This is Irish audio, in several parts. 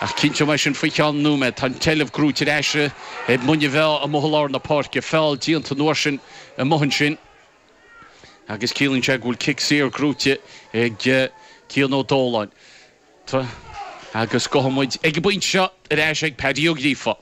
Ach cinnte mar sin, faoi cheann nóiméad, tá an tseilbh gnóite ar ais ag Muine Mheá amuigh i lár na páirce. Feall déanta an uair sin amuigh ansin agus ciallaíonn sé go bhfuil cic saor gnóite ag Cian Ó Dóláin. Tá, agus gabhfaidh muid ag an bpointe seo, ar ais ag Paddy Ó Gríofa.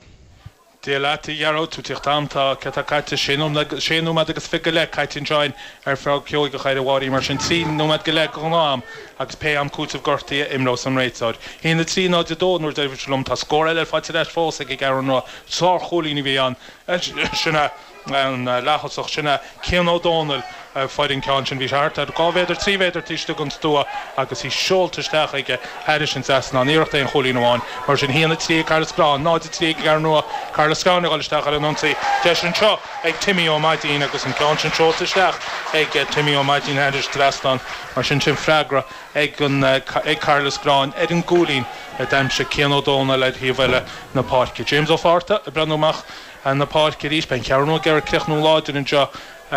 Dia leat, a Ghearóid, tú ag tíocht agam. Tá cad tá caite, sé nóiméad, sé nóiméad agus fiche go leith caite anseo ar feadh ceóigeach ar a bharr í mar sin, trí nóiméad go leith de ghnáth-am agus pé am cúiteamh gortaí a imreos an réiteoir. Haon a trí náid a dó an uair dheiridh a bhí sibh liom, tá scór eile faighte ar ais fós ag an gCeathrú Rua, sárchúilín a bhí ansin ag. an leaththosach, sin é Cian Ó Dónaill, a fuair an ceann sin. Bhí sé thart ar dhá mhéadar, trí mhéadar taobh istigh den stua agus í seolta isteach aige thairis an trasnán. Iarracht aon chúilín amháin. Mar sin, 1 3 ag Cathair Loistreáin, 0 3 ag an gCeathrú Rua. Cathair Loistreáin ag dul isteach ar an ionsaí. Deis anseo ag Timmy Ó Maidín agus an ceann sin seolta isteach ag Timmy Ó Maidín thairis trasnán. Mar sin, sin freagra ag Cathair Loistreáin ar an gcúilín a d'aimsigh Cian Ó Dónaill ar thaobh eile na páirce. James Ó Fátharta ag breathnú amach. Ar an bpáirc arís, beidh an Cheathrú Rua ag iarraidh críochnú láidir anseo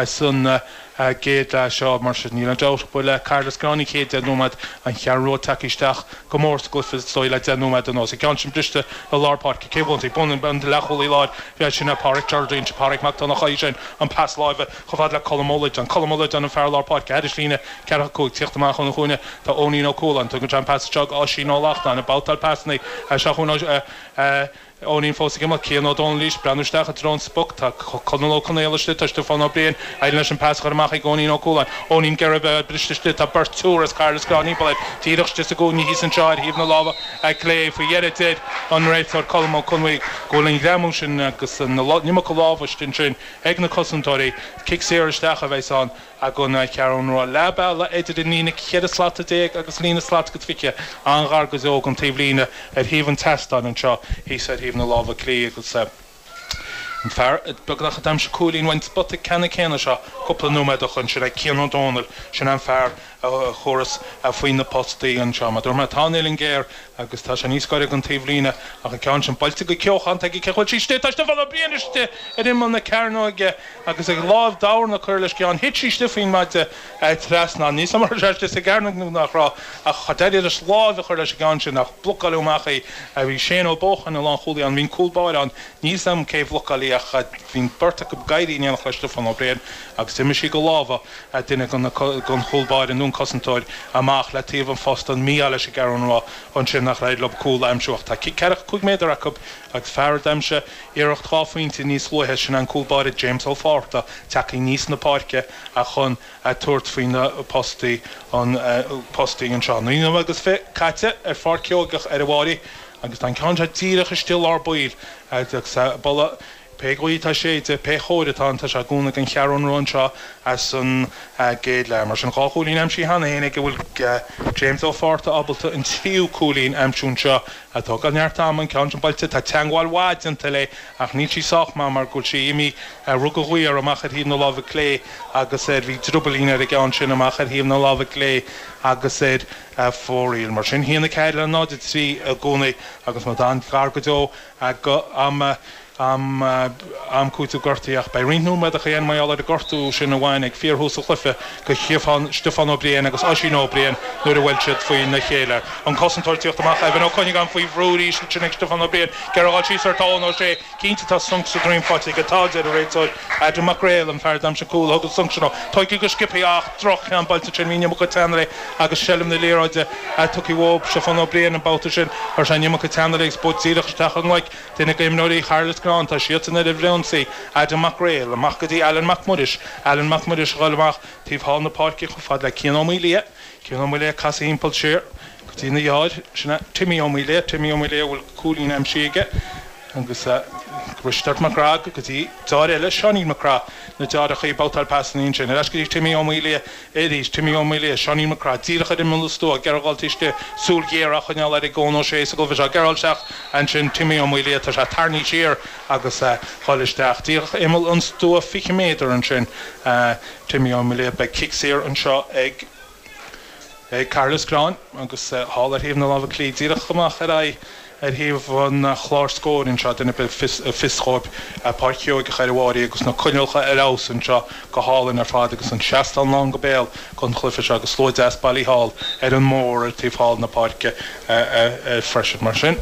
san gcéad leath seo. Mar sin, níl aon dabht ach go bhfuil Cathair Loistreáin, an chéad deich nóiméad, an Cheathrú Rua, tagtha isteach go mór sa gcluiche, is dóigh, le deich nóiméad anuas. An ceann sin briste i lár páirce, cé a bhuafaidh? Buann an leathchúlaí láir bhreed sin é Páraic Jordan? Sin Páraic Mac Donnacha, eisean an pas láimhe chomh fada le Colm Ó Loideáin. Colm Ó Loideáin an fear lár páirce, thairis líne ceathracha cúig, tíocht amach óna chúinne tá Eoinín Ó Cualáin. Tugann sé an pas isteach go Oisín Ó Lachtnáin, ag babhtáil pasanna isteach chun Eoinín fós ag imeacht. Cian Ó Dónaill, leis, breathnú isteach i dtreo an spota. Tá Conall Ó Conaola istigh, tá Stiofán Ó Briain éiríonn leis an pas a chur amach chuig Eoinín Ó Cualáin. Eoinín ag iarraidh bheith briste istigh. Tá beirt triúr as Cathair Loistreáin timpeall air. Díreach istigh sa gcúinne thíos anseo ar thaobh na láimhe clé. Faoi dheireadh deir an réiteoir Colm Ó Conbhuí go bhfuil an greamú sin agus an iomarca lámha istigh ansin ag na cosantóirí. Cic saor isteach a bheas ann. Ag an gCeathrú Rua leath bealaigh idir an líne ceithre slata déag agus líne slat agus fiche, an-ghar go deo don taobhlíne ar thaobh an tseastáin, anseo thíos ar thaobh na láimhe clí, agus an fear beagnach a d'aimsigh cúilín ón spota ceannann céanna seo cúpla nóiméad ó shoin. Sin é Cian Ó Dónaill, sin é an fear a thabharfas faoi na postaí anseo. Mar dúirt mé, tá an uillinn géar agus tá sé níos gaire don taobhlíne, ach an ceann sin, buailte go cumhachtach aige, 'bhfuil sí istigh, tá sí ag tuirlingt istigh ar imeall na cearnóige. agus ag láimh dorn a cuireadh leis an gceann thit sí istigh faoin maide trasna níl a fhios agam an raibh sé istigh sa gcearnóg nó nach raibh ach d'éirigh leis láimh a chur leis an gceann sin ach blocáileadh amach í bhí Shane Ó Buacháin an lánchúlaí ann bhí'n cúl báire ann níl a fhios agam cé bhlocáil í ach bhí'n bheirt acu ag éirí in éineacht le Stiofán Ó Briain agus d'imigh sí de lámha duine den chúl báire nó an cosantóir amach le taobh an phosta an mí-ádh leis an gCeathrú Rua ansin nár éirigh leo cúl a aimsiú ach tá ceathracha cúig méadar acu Agus fear a d'aimsigh iarracht dhá phointe níos luaithe, sin an cúl báire James Ó Fátharta, tagtha aníos na páirce ach chun a tabhairt faoi na postaí an postaí anseo. Naoi nóiméad agus fiche caite ar pháirc Sheoigeach ar an bPrairie agus tá an ceann seo díreach istigh i lár baill agus bhuel pé gaoth atá ag séideadh, pé chóir atá ann, tá sé de chúnamh ag an gCeathrú Rua anseo ins an gcéad leath. Mar sin, dhá chúilín aimsithe cheana féin aige, an bhfuil James Ó Fátharta ábalta an tríú cúilín a aimsiú anseo ag tógáil neart ama an ceann sin buailte. Tá teangmháil mhaith déanta léi ach níl sí sách maith mar go bhfuil sí imithe ar rugadh uaidh amach ar thaobh na láimhe clé agus ar bhí driobaillín ar an gceann sin amach ar thaobh na láimhe clé agus ar fóraoil. Mar sin, a haon a ceathair le 0:03 i gcónaí agus muid an-ghar go deo go am a am am cúitimh gortaithe ach beidh roinnt nóiméadacha déarfainn mar gheall ar an ngortú sin a bhain ag fíorthús an chluiche go Stiofán Stiofán Ó Briain agus Oisín Ó Briain nuair a bhuail siad faoi na chéile an cosantóir ag tíocht amach Evan Ó Cuinneagáin faoi bhrú arís ansin ag Stiofán Ó Briain gearr a dháil síos ar tá Eoin Ó Sé cinnte tá sonc sa droim faighte aige a deir an réiteoir Adam Mac Réill an fear d'aimsigh cúl a thug an sonc sin dhó tógtha go sciobthaí ach droch-cheann buailte ansin bhí an iomarca teannadh air agus seilbh na liathróide tugtha ó Stiofán Ó Briain an babhta sin chuir sé an iomarca teannadh air ag spórt díreach isteach i nglaic duine go imreoirí Chathair Loistreáin tá siadsan i mbun ionsaí, Adam Mac Réill, amach go dtí Alan Mac Muiris, Alan Mac Muiris ag goil amach taobh thall na páirce chomh fada le Cian Ó Maolaodha, Cian Ó Maolaodha ag casadh timpeall siar go dtína dheartháir, sin é, Timmy Ó Maolaodha, Timmy Ó Maolaodha a bhfuil cúilín aimsithe aige, agus Risteard Mac Craith go dtí deartháir eile, Seáinín Mac Craith, na deartháireacha ag babhtáil pasanna ansin, ar ais go dtí Timmy Ó Maolaodha. Arís, Timmy Ó Maolaodha, Seáinín Mac Craith, díreach ar imeall an stua, Gearóid Bhailtíste, súil ghéar á choinneáil air ag Eoin Ó Sé sa gcluiche seo, Gearóid isteach, ansin Timmy Ó Maolaodha, tá sé tarraingthe siar agus é ag goil isteach, díreach ar imeall an stua, 20 méadar ansin Timmy Ó Maolaodha, beidh cic saor anseo ag Cathair Loistreáin agus thall ar thaobh na láimhe clí, díreach amach ar aghaidh. Ar thaobh an chláir scóir anseo duine ar bith a bhfuil a fhios acu, Páirc Sheoigeach ar an bPrairie agus na coinníollacha ar fheabhas anseo go hálainn ar fad agus an seastán lán go béal gon chluife seo agus slua deas bailithe thall ar an mbóthar taobh thall na páirce freisin. Mar sin.